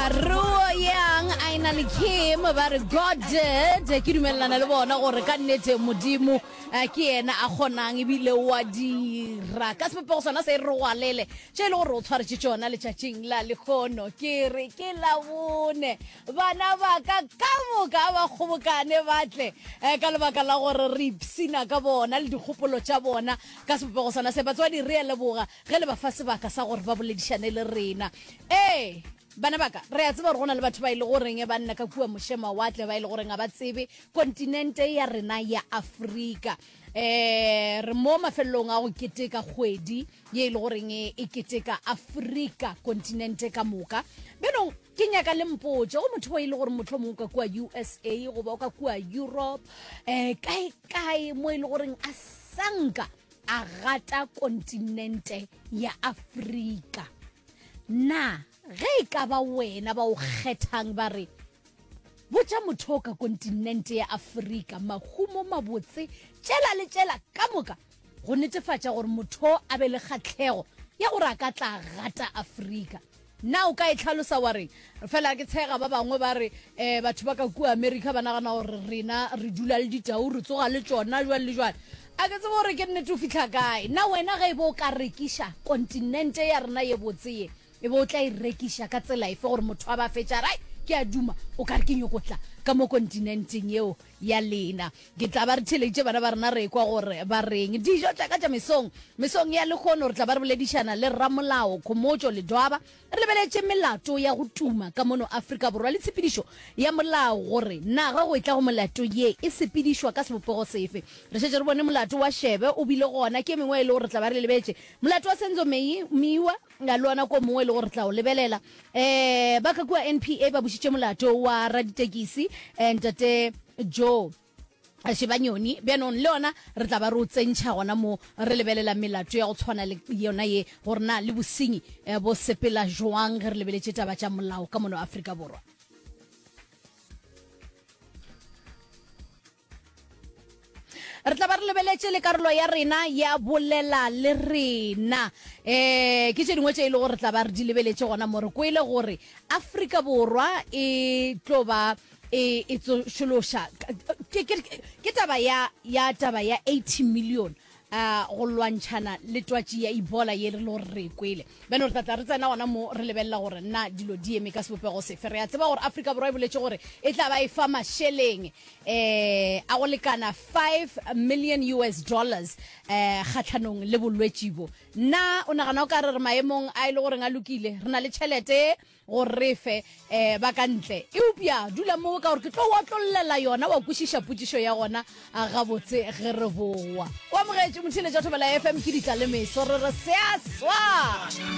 Ruo Yang a e na le Kim ba re God did ke dumelelana le bona gore ka nnete modimo eh, ke yena a kgonang ebile wa dira ka sebopego sona se re gwalele tše e le gore o tshwaretše tšona letšatšing la lekgono ke re ke labone bana ba ka ka moka ba kgobokane batle eh, ka lebaka la gore re ipsina ka bona le dikgopolo tša bona ka sebopego sona se batswadi re a leboga ge le ba fa sebaka sa gore ba boledišane le rena Ee, bana ba ka, re a tseba gore go na le batho ba e le goreng ba nna ka kua mošemawatle ba e le goreng ga ba tsebe kontinente ya rena ya Afrika. Eh, re mo mafelelong a go keteka kgwedi ye e le goreng e e keteka Afrika kontinente ka moka. Bjanong ke nyaka le mpotse go motho o e le gore motlho mongwe ka kua USA goba o ka kua Europe, eh, kae kae mo e le goreng a sanka a gata kontinente ya Afrika. Na ge e ka ba wena ba o kgethang ba re, Botša motho o ka kontinente ya Afrika mahumo mabotse tšela le tšela ka moka go netefatša gore motho a be le kgahlego ya gore a ka tla gata Afrika. Na o ka e hlalosa wa re, Fela ke tshega ba bangwe ba re, eh, batho ba ka kua Amerika ba nagana gore rena re dula le ditau, re tsoga le tšona, jwale le jwale. A ke tsebe gore ke nnete o fihla kae. Na wena ge e be o ka rekiša kontinente ya rena ye botse ye, e be o tla e rekiša ka tsela efe gore motho a be a fetše a re, Ai, ke a duma, o ka re ke nyoko tla ka mo kontinenteng yeo ya lena? Ke tla ba re theeleditše bana ba rena re ekwa gore ba reng. Dijo tša ka tša mesong. Mesong ya lekgono re tla ba re boledišana le Rramolao Khomotšo Ledwaba re lebeletše melato ya go tuma ka mono Afrika Borwa le tshepedišo ya molao gore na ga go etla go melato ye e sepedišwa ka sebopego sefe. Re šetše re bone molato wa Shebe o bile gona ke e mengwe e le gore re tla ba re lebetše. Molato wa Senzo Meyiwa. nga le ona ko mongwe e le gore re tla o lebelela um ba ka kua npa ba bušitše molato wa raditekisi um ntate joe shebanyoni bjanong le yona re tla ba re o tsentšha gona mo re lebelela melato ya go tshwana le yona ye gore na le bosenyi eh, bo sepela joang ge re lebeletše taba tša molao ka mono aforika borwa re tla ba re lebeletše le karolo ya rena ya bolela le rena um ke tše dingwe tše e le gore re tla ba re di lebeletše gona mo re kwele gore afrika borwa e tlo ba e, e tsošološa ke taba ya taba ya 80 million a go lwantšhana le twatši ya ebola ye re lo re kwele bjale re tlatla re tsena gona mo re lebelela gore na dilo di eme ka sebopego sefe re a tseba gore afrika borwa e boletše gore e tla ba e fa mašeleng um a go lekana 5 million us dollars um kgatlhanong le bolwetši bo na o nagana o ka re re maemong a e le goreng a lokile re na le tšhelete gore re fe um ba ka ntle eupša dula moo ka gore ke tlo otlololela yona wa kwešiša potšišo ya gona a gabotse ge re bowa o amogetše motheletša thobela fm ke ditla le meso re re seaswa